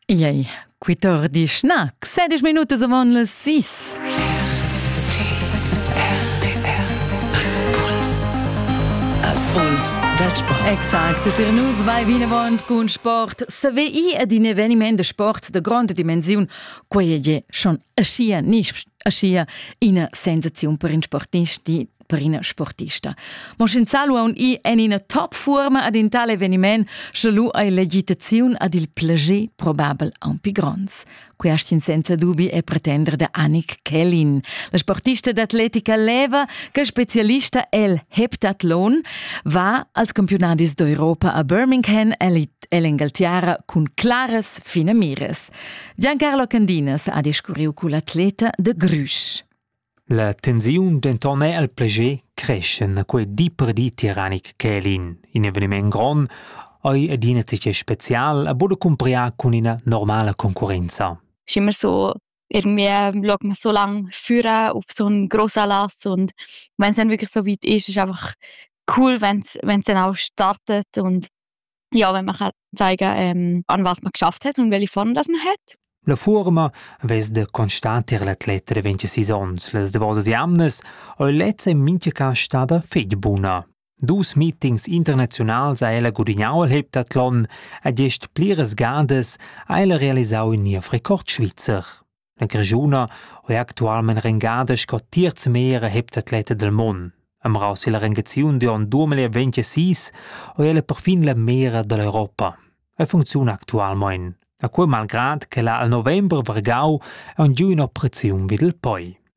Iei, quitor di schnac, sedisch minutas avon las sis. Exakt, der News vai vinavant cun sport. SWI ed in eveniment de sport de grande dimensiun, quei è schon aschia nisp, aschia ina sensaziun per in sportist di per ina sportista. Mo sc'insalu aun i en ina top furma ad in tal eveniment, sche lu ei l'agitaziun ad il plager probabel aunc gronds. Quest in senza dubi è pretender de Annik Kellin. La sportista d'atletica leva che specialista el heptathlon va als campionadis d'Europa a Birmingham el'Engaltiara cun claras fine mires. Giancarlo Candinas ha discurriu cu l'atleta de Grüsch. La tensiun denton era el plascher creschen a quei di per di tiranic ch'ei in, in eveniment grond ei adina tgei special a buca cumpriar cun ina normala concurrenza. Schi mir so irgendwie log man so lang führen auf so einen grossen Lass und wenn es dann wirklich so weit ist, ist einfach cool, wenn es dann auch startet und Jau vegn marcà taiga an was ma geschafft het und welche Form das man hat. La fuorma vess da constater l'atlet da 26 ons. Las davosas jamnas ei lezza in mincha cas stada fetg buna. Dus meetings internazionals ha ella gudignau al Heptathlon ed gest pliras gadas ha ella realisau in niev Rekord svizzer. La Grischuna ho eir actualmaing rengada sco terz meglier heptatleta dal mond. Amraus illa rengaziun d'on 2026 ho ella perfin la meglra da l'Europa. E funcziuna actualmaing. A cua malgrad ch'ella al november vargau haun giù ün'operaziun vid il poi.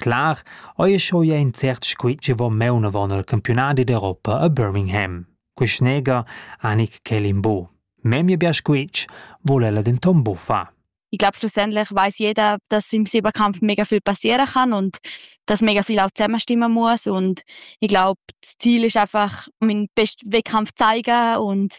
Clar eir sco i ais incert scu chi vo maunavant al campiunadi d'Europa a Birmingham. Quist neger Anik Kelimbo. Memia bger squitsch voul ella denton buc far. Ich glaube, schlussendlich weiß jeder, dass im Silberkampf mega viel passieren kann und dass mega viel auch zusammenstimmen muss. Und ich glaube, das Ziel ist einfach, meinen besten Wettkampf zu zeigen und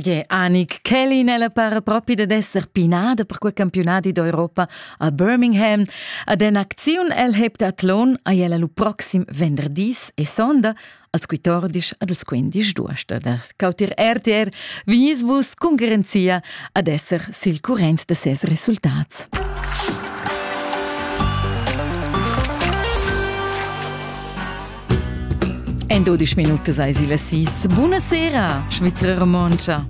Gie, Anik Kelly nella para propi ded esser pinada per quei campiunadi d'Europa a Birmingham. Ad en acziun el heb d'atlon ai ella lu proxim venderdis e sonda als 14 ad als 15 d'uost. Da cautir RTR Vinisbus cun garanzia ad esser sil current de ses resultats. En 12 minutas eis il sis. Buna sera, Svizra Romontscha!